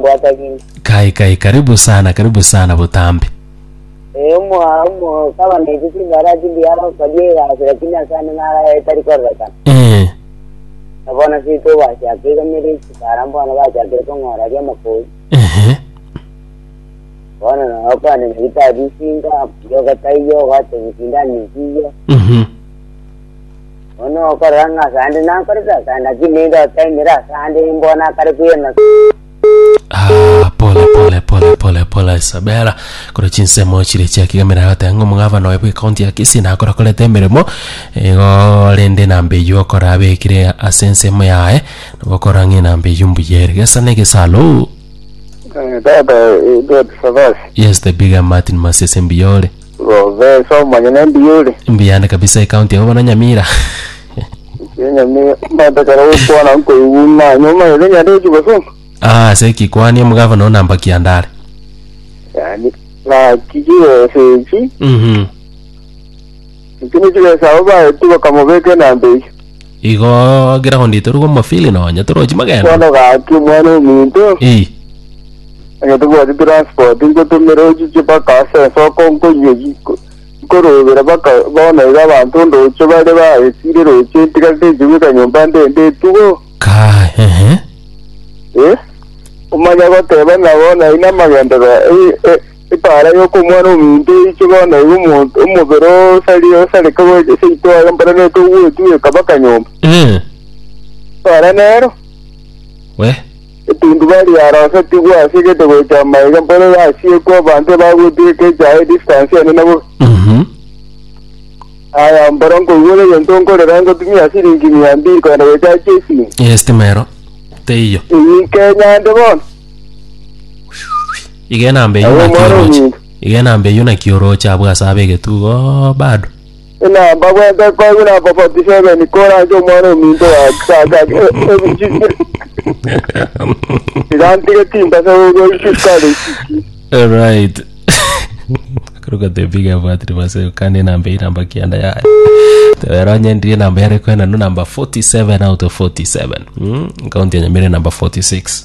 Bwatagini. Kai kai karibu sana karibu sana botambe. Eh omo omo kaba na ise chingara chindi yara okabia egasi lakini ase ande nara etari kororekana. Eh. Na bono seito gwachaka igamere chikara mbono bachakire kong'ora aria amakori. Ehe. Bono na okande na gitabu isinga yo gataiyo gwate gusindana isiyo. Mhm. Bono okorora ng'a asande nakorete asande, lakini naende otaimire asande imbogo nakare kwirana Ah, pole pole pole pole pole isabela kore chinsemo chire chiakigamera agateba ng'a omogavana oye bw'ekaunti ya kisii nakora korete emeremo igo rende namba eywo okora abekire ase ensemo yaye nabo okora ng'a enamba eywo mbuya ere gesa na egesa alo Eh, dada eh, Edward Savasi yes the bigger martin masese mbuya ore Gobesa omonyene mbuya ore. Mbuyande kabisa ekaunti abo bana Nyamira. Enyami mata kare gokwana nkoigwa ng'a nyoma ere nyare ekiboso. Ah, ase ki kwani omogavana o namba kiandare. Yani naki chibesa echi. Mhm. Echi ne chibesa abo baetigwa kamobeka enamba echi. Igo ground torigwe omofili nonye torochi magendo. Bono gaki omwana ominto, Ii. onye tobwati transport nkotumere ochiche mpaka ase ensoko nkonywe ki nko- nkorobera mpaka bono iga abanto ondoche bare baesire roche ntiga nteche goika nyomba nde ndetugo. Kaai, ehe. Eh? Omanya goteba nabo nainamagenderero, eh, eh, Epaara y'okomwana-ominto eiche bono igo omonto omobere osari osareka bwe seito aye mbare neke ogwetigwa ekaba kanyomba. Eh, Epaara nero we. etunduba riarosetigwe ase gete gocha amaiga mbare yasiekwe abanto ebagwetigwa ekeche aye distance ende nabo. Mhm. Aya mbare nkoigwa ore egento nkorera ngotumia siringi mia mbiri kogenda gocha chiesini. Eh, estima ero teiyo. Eyike nyande bono. igena mbe Agwo yuna mwana kioroche omuntu. igena mbe yuna kioroche abwo ase abe egetugo oh, bado Buna bagwete koi buna for 47 kora ase omwana ominto wakaka igantire timba se gogoishi kare isiki right akaruka tebiga abwatire base kandi enamba eye namba kianda yaye teberonye ndiri enamba yare kwena no namba 47 out of 47 mm? kaunti ya nyamira namba 46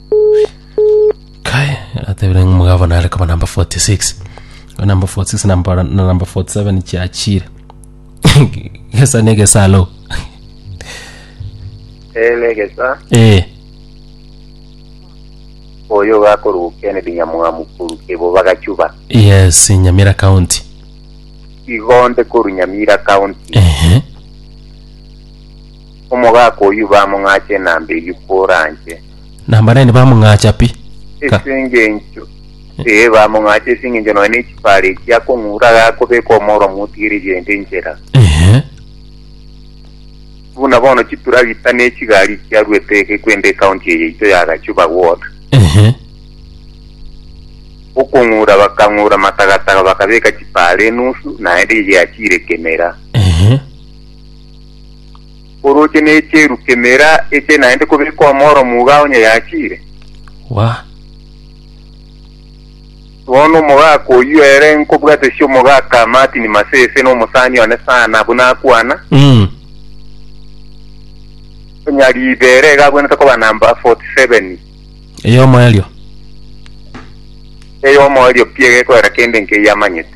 kai atebire ng'a omogabo nare koba number 46 Oyo number 46 na number- na number 47 chiachire gesa na egesalo ee negesa ee oyo gakoruga kennedy nyamwamu koruga ebo bagachuba yes nyamira county igonde koru nyamira county ehe Omogaka oyio bamong'acha enamba eyio koranche. Na mbanene bamong'acha pi. Ka. Ase engencho, ee, bamong'acha ase engencho nonya nechipara echi akong'ura agakobeka omoro motigereria ende enchera. Ehe. Buna bono chituragita ne chigari chiaruete eke kwenda ecounty eye yaito ya Gachuba ward. Ehe. Okong'ura bakang'ura matagataga bakabeka chipara enusu naende eyiachiire kemera. Ehe. orooche nechieru kemera eche naende kobekwa omoro muga onye yachiire. Wa. Bono omogaka oyio ere nkobwatesia omogaka Martin Masese na omosani one sana buna akwana, Mm. onya riibe ere iga agwenerete koba namba 47, Eyomo erio. eyomo erio pi egekoera kende nkeiamanyete.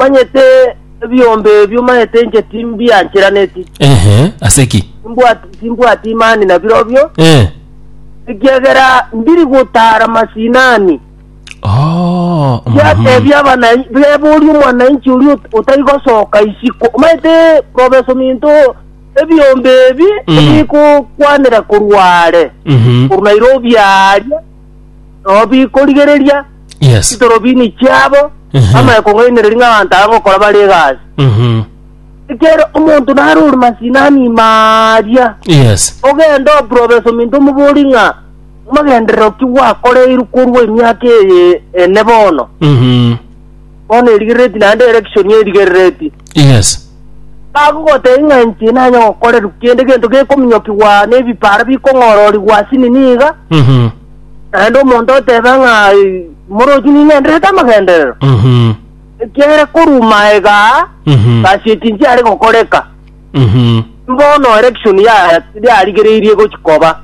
Manyete ebiombe ebio maete inche timbiancheraneti. Ehe, ase ki? Timbwati timbwati imani na birobio, Eh. ekiagera ndiri gotara masinani. Oh. mhm. Yatebia abanainchi, beboria omwanainchi oria ot- otari gosoka isiko. Maete Professor Minto ebiombe ebi Mm. ebikokwanera korwa are. Mhm. Koru Nairobi aria Robi korigereria Yes. chitorobini chiabo Mhm. amaya kong'ainereria ng'a abanto aba gokora bare egasi Mhm. ekero omonto nare ore masinani maria Yes. ogenda oprobesa ominto omobori ng'a magenderero ki gwakoreirwe korwa emiaka eye ene bono Mhm. bono erigerereti naende erection erigerereti. Yes. Bagogotebia ng'a inche nanye gokorerwa kende gento gekominyokigwa na ebipara bikong'ororigwa ase nini iga, Mhm. naende omonto otebe ng'a "Eh, morochi ning'enderete amagenderero, Mhm. ekiagera korwa maega aa, Mhm. gasi eki nchiare gokoreka. Mhm. Bono erection ya- yarigereirie gochia koba,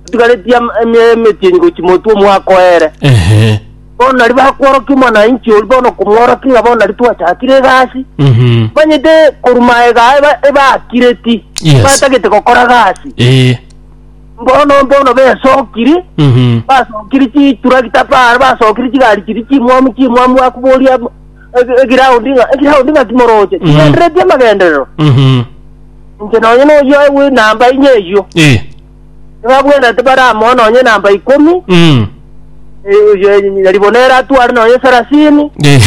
otigaretie am- eme- emetienyi gochia motwe omwaka o ere. Ehe. bono nari bakworokia omwana wa inche oria bono komworokia ng'a bono nari twachakire egasi Mhm. manyete korwa maega eba- ebakireti Yes. batagete gokora gasi Eh. bono bono besokiri Mhm. basokiri chiturakita para basokiri chigari chiri chimwamu chimwamu akuboria egiraundi ng'a egiraundi ng'a kimoroche Mhm. chigendereti amagenderero Mhm. inche nonye noyoe bw'enamba inye eyio Eh. Tibabwenerete bare amo nonye namba ikomi, Mm. eh, oyo nyari bono ere atware nonye sarasini, Eh.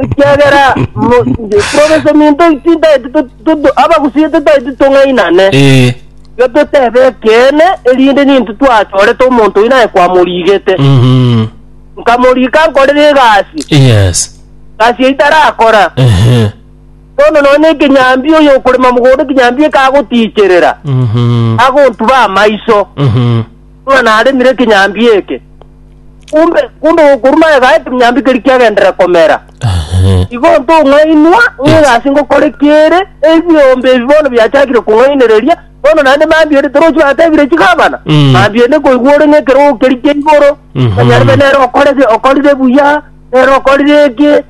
ekiagera mo- nge- province minto tintaeti tu- tu- tu- abagusie titaeti tong'ainane Eh. yo totebe ekene erinde nintu twachorete omonto oyi naye kwamorigete Mhm. nkamorika nkorere egasi Yes. gasi itarakora Ehe. Bono nonya ekenyambia oyo okorema mogondo ekenyambia eke agotiicherera, Mhm. agontuba amaiso Mhm. ng'a naremire ekenyambia eke. Kumbe kumbe gokorwa naye gae ekenyambia keri kiagendera komera. Ehe. Igo ntong'ainwa ng'a ase ngokore kiere ebiombe ebi bono biachakire kong'ainereria bono naende mambia ore torochi batebire chigabana Mm. mambia ende koigwa ore ng'ekerogo keri kia igoro Mhm. manyarebe nere okorege okorire buya nere okorire eke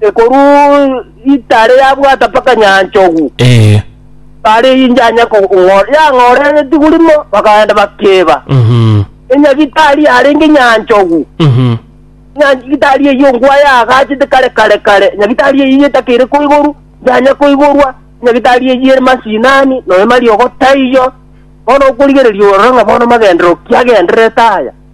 Ekorwa itare yabwata mpaka nyanchogu, Ee. bare injanya kong'ora, yang'ora egetigwa rimo, bakagenda bakeba. Mhm. Enyagitari yarenge nyanchogu, Mhm. nyagitari eyio ngwa yagachete kare kare kare, nyagitari eyio etakeire koigoru, njanya koigorwa, nyagitari eyio ere masinani, noyo mariogo taiyo, bono okorigereria orore ng'a bono magenderero ki agendererete aya.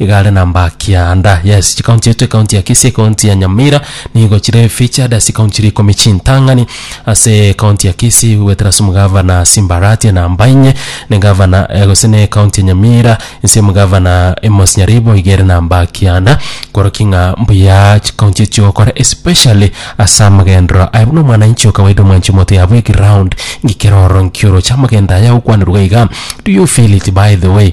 Egare na Mbakia and yes chikaunti eto ekaunti ya Kisii ekaunti ya Nyamira nigo chire featured ase ekaunti chire ikomi chintang'ani ase ekaunti ya Kisii gwetera ase omogavana Simbaratia na Mbainye ne gavana eh, gose ne ekaunti ya Nyamira ase omogavana Amos Nyaribo iga ere na Mbakia and koroki ng'a mbuya chikaunti echi gokora especially ase amagendero aye buna omwananchi o kawaida omwanchi omoto yabwo eground ngikera ororo nkioroche amagendo aya agokwanerwa iga do you feel it by the way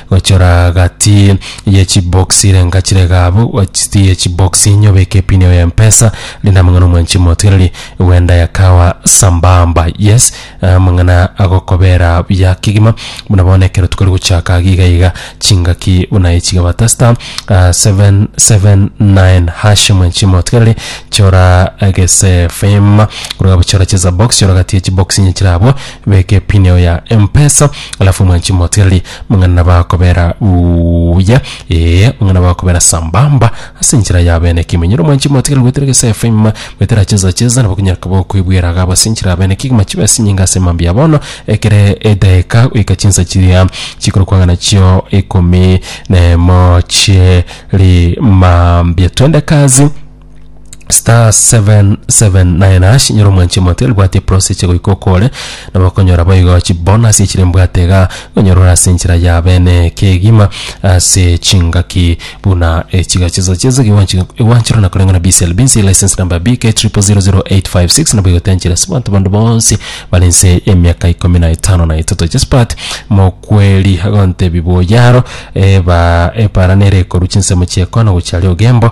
gochora gati ye chiboksi renga chirega abwo gati ye chiboksi nyobeke epini yao ya mpesa rinde amang'ana omwanchi motigereri wenda yakawa sambamba yes amang'ana agokobera buya kegima buna bono ekero tokori gochaka iga iga iga chingaki buna ichi gabata star ah, 779 hash mwanchi motigereri chora egesefema korwa bochora cheza box chora gati ye chiboksi nyechira abwo Beka epin yao ya mpesa alafu mwanchi moteli mang'ana bakobera buya ee mang'ana bakobera sambamba ase enchera ya bene kimenyero mwanchi moteli gwetera gesa fm gwetera cheza cheza nabo kunyara kabo kwibwera gabo ase enchera ya bene kigima chibe ase nyinga ase mambi ya bono ekere edaika goika chinsa chiria chikoro kwang'ana chio ikomi na emo chie ri mambia twende kazi star 779 ash nyora omwanchi omoto elibwati eprosi chigoika okore nabo okonyora boigo chibonasi echire mbwate iga onyorora ase enchera ya bene kegima ase chingaki buna echiga chiso chiso iwanchirana koreng'ana BCLB nse license number BK 000856 nabo igotenchera ase abanto bande bonsi bare nse emiaka ikomi na etano na etato Josephat Mokweri agontebia boyaro eba epara nere ekoru chinsemo chi'ekono gochia aria ogembo